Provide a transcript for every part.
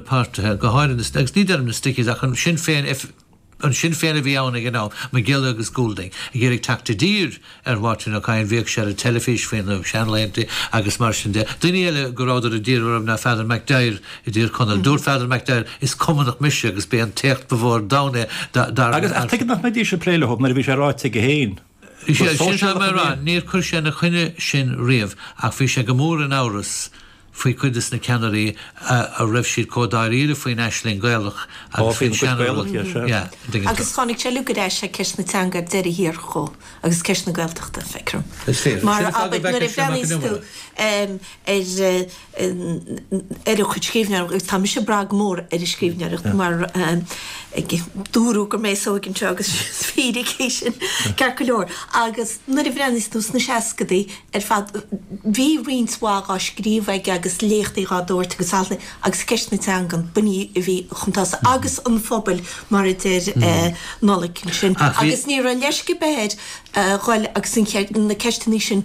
páirtithe, go háirithe na, agus ní deirim na Stickies ach an Sinn Féin an Sinn Féin a bhí ann ag an am, Mac Giolla agus Goulding, ag iarraidh teacht i dtír ar Mháirtín Ó Cadhain, bhíodh sé ar an teilifís faoi na seanlaethanta agus mar sin de. Daoine eile go rabhadar i dtír orthu ná Father McDyer i dTír Chonaill. Dúirt Father McDyer, 'Is Cumannach mise agus b'é an t-éacht ba mhó ar domhan é, dar le, Agus, ach tuige nach mbeidís ag plé leo nuair a bhí sé ráite aige féin? Is é sin atá mé a rá, níor chuir sé ina choinne sin riamh ach bhí sé go mór in amhras faoi chuid de na ceannairí a raibh siad chomh dáiríre faoin aisling Ghaelach agus faoin seanfhondúireacht. Agus tháinig sé go deas ag ceist na teanga ar deireadh thiar thall agus ceist na Gaeltachta, feicim. Is fíor. Mar a bhreathnaíos tú ar. ar a chuid scríbhneoireachta agus tá mise ag brath go mór ar a scríbhneoireacht mar dúradh gur mé is óige anseo agus is fíric é sin ceart go leor agus nuair a bhreathnaíos tú sna seascadaí ar fad bhí roinnt mhaith á scríobh aige agus léachtaí á dtabhairt agus altraí agus ceist na teangan ba ní a bhí chun tosaigh agus an phobail mar a deir Nollaig ansin agus ní raibh leisce ar bith air dhul agus na ceisteanna sin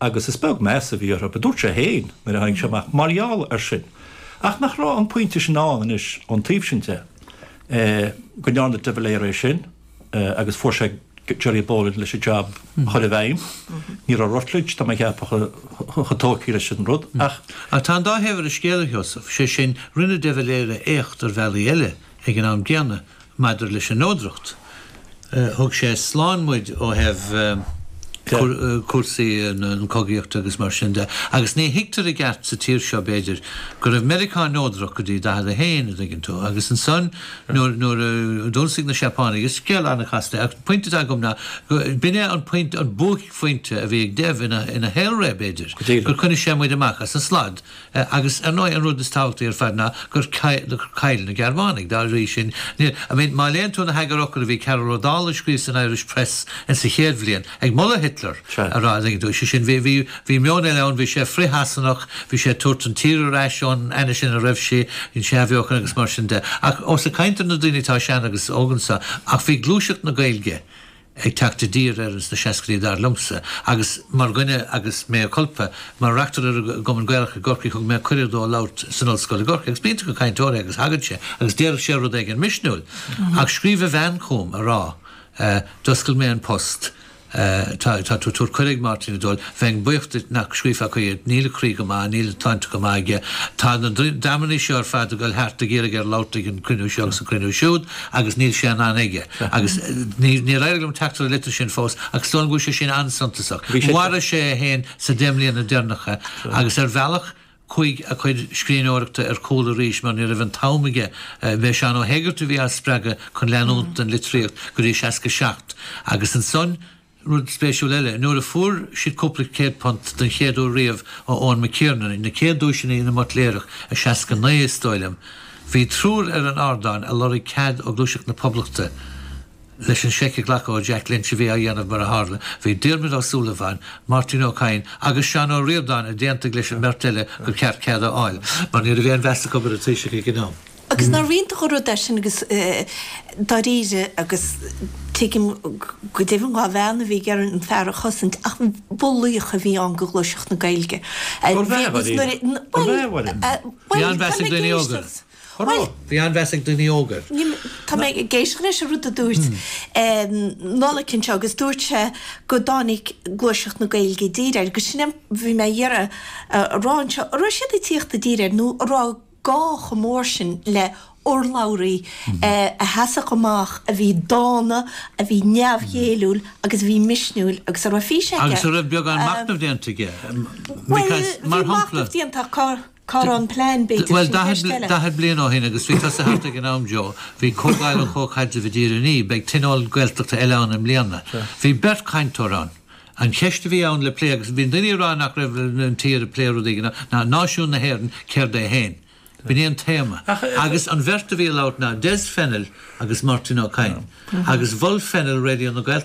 agus is beag meas a bhí orthu, a dúirt sé féin nuair a tháinig sé amach, mar gheall air sin, ach nach raibh an pointe sin ann anois ón taobh sin de, go ndearna de Valera é sin agus fuair sé Gerry Boland leis an jab a chur i bhfeidhm. Ní raibh Rutledge, tá mé a cheapadh, chomh tógtha leis an rud ach. Ach tá an dá thaobh ar an scéal, a Sheosaimh, sé sin, rinne de Valera éacht ar bhealaí eile ag an am gcéanna Maidir leis an neodracht, thug sé slán muid ó thaobh cúrsaí na cogaíochta agus mar sin de, agus ní thuigtear i gceart sa tír seo, b'fhéidir, go raibh Meiriceá neodrach go dtí 41, a' dtuigeann tú, agus ansan nuair a d'ionsaigh na Seapánaigh, is scéal an-chasta é, ach an pointe atá agam ná go, b'in é an pointe, an buaicphointe a bhí ag Dev ina shaolré, b'fhéidir, gur choinnigh sé muid amach as an slad. Sea, agus ar ndóigh an rud is tábhachtaí ar fad ná gur chaill na Gearmánaigh, dá bhrí sin, níl, I mean, má léann tú na heagarfhocail a bhí Cearbhall Ó Dálaigh a scríobh san Irish Press ins a chéad bhliain, ag moladh Hitler, ag rá, tuigeann tú, sé sin, bhí, bhí, bhí meon eile ann, bhí sé frith-Shasanach, bhí sé ag tabhairt an tír ar ais ón ainnise ina raibh sí, an athbheochan agus mar sin de. Ach, ós ag caint ar na daoine atá sean agus óg anseo, ach bhí gluaiseacht na Gaeilge, ag teacht i dtír air ins na seascaidí dar liomsa agus mar dhuine agus mea culpa. Mar reachtaire ar an gCumann Gaelach i gCorcaigh thug mé cuireadh dó labhairt san Ollscoil i gCorcaigh agus b'iontach an cainteoir é agus thagadh sé agus déarfadh sé rud éigin misniúil ach scríobh a bhean chugam a rá d'oscail mé an post tá tú ag tabhairt cuireadh ag Máirtín ag dul, bheinn buíoch duit nach scríobhfá chuige, níl a chroí go maith, níl an tsláinte go maith aige, tá na dreamannaí seo ar fad ag dul thart ag iarraidh air labhairt ag an chruinniú seo agus an chruinniú siúd agus níl sé in ann aige. Agus níor éirigh liom teacht ar an litir sin fós, ach is dóigh liom go bhfuil sé sin an-suntasach. Mharaigh sé é féin sna deich mbliana deireanacha, agus ar bhealach chuaigh a chuid scríbhneoireachta ar chúl arís, mar ní raibh an t-am aige. B'é Seán Ó hÉigeartaigh a bhí á spreagadh chun leanúint den litríocht go dtí 67, agus ansan, Rud spéisiúil eile, nuair a fuair siad cúpla céad punt don chéad uair riamh ó Eoin McKiernan, na céad duaiseanna na mBuitléarach i 69 is dóigh liom, bhí triúr ar an ardán a lorg cead ó Ghluaiseacht na Poblachta leis an seic a ghlacadh ó Jack Lynch a bhí á dhéanamh mar a tharla. Bhí Diarmaid Ó Súilleabháin, Máirtín Ó Cadhain agus Seán Ó Ríordáin a d'aontaigh leis an mbeirt eile gur cheart cead a fháil mar ní raibh aon mheas acu ar an Taoiseach ag an am. Agus ná rian de dhá rud é sin agus dáiríre agus tuigim go deimhin dhá bheann a bhí ag an fear a chosaint ach ba laoch a bhí ann do ghluaiseacht na Gaeilge. Ba bhreá a bhí. Ba bhreá a bhí. Bhí an-mheas ag daoine óga air. Á rá. Bhí an-mheas ag daoine óga air. Tá mé ag éisteacht leis an rud a dúirt Nollaig anseo agus dúirt sé go dtáinig gluaiseacht na Gaeilge i dtír air agus sin é bhí mé ag iarraidh a rá anseo, an raibh siad ag tíocht i dtír air nó an raibh gá chomh mór sin le hurlabhraí a sheasfadh amach, a bhí dána, a bhí neamhghéilliúil agus a bhí misniúil agus a raibh fís aige. Agus a raibh beagán machnaimh déanta aige. Bhuel, bhí machnamh déanta ach cá raibh an plean b'fhéidir, sin ceist eile. Bhuel, daichead bliain ó shin, agus bhí tusa thart ag an am, Joe, bhí Comhdháil an Chomhchaidrimh i dTír an Fhia, beidh tionól Gaeltachta eile ann i mbliana. Bhí beirt chainteoir ann. An cheist a bhí ann le plé, agus bhí daoine ag rá nach raibh an tír ag plé rudaí ná náisiún na hÉireann céard é féin. B'in é an téama. Agus an bheirt a bhí ag labhairt ná Des Fennell agus Máirtín Ó Cadhain. Agus mhol Fennell Raidió na Gaeltachta.